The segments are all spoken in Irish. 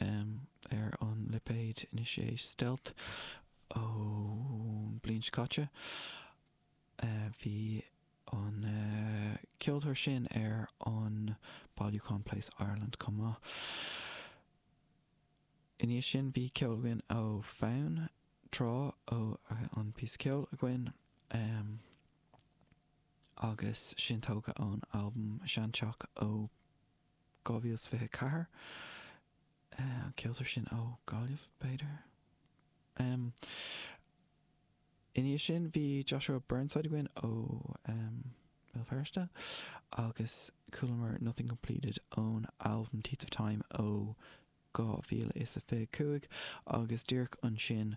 ar an lipéad Anois É Stealth ón bliain seo caite. Bhí an ceoltóir sin ar an bailiúchán PLACE Ireland chomh maith. Ina dhiaidh sin bhí ceol againn ó Fonn Trá an píosa ceol againn agus sin tógtha ón albam Sean Teach ó 2024, an ceoltóir sin ó Ghaillimh, b'fhéidir. Ina dhiaidh sin bhí Joshua Burnside againn ó Bhéal Feirste agus chualamar Nothing Completed ón albam Teeth of Time ó 2025 agus díreach ansin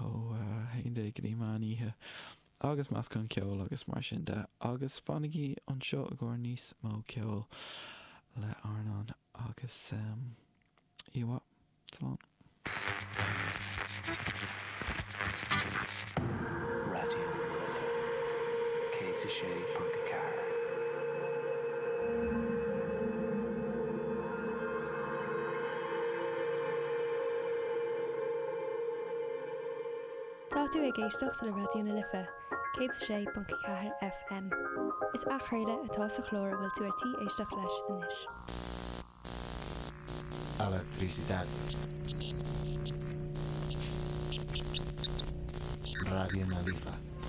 ó a haon déag go dtí meán oíche agus meascán ceoil agus mar sin de agus fanaigí anseo i gcomhair níos mó ceoil le RnaL agus oíche mhaith. Slán. Raidió na Life 106.4. Tá tú ag éisteacht le Raidió na Life, 106.4 FM. Is athchraoladh atá sa chlár a bhfuil tú ar tí éisteacht leis anois. Electricidad Raidió na Life.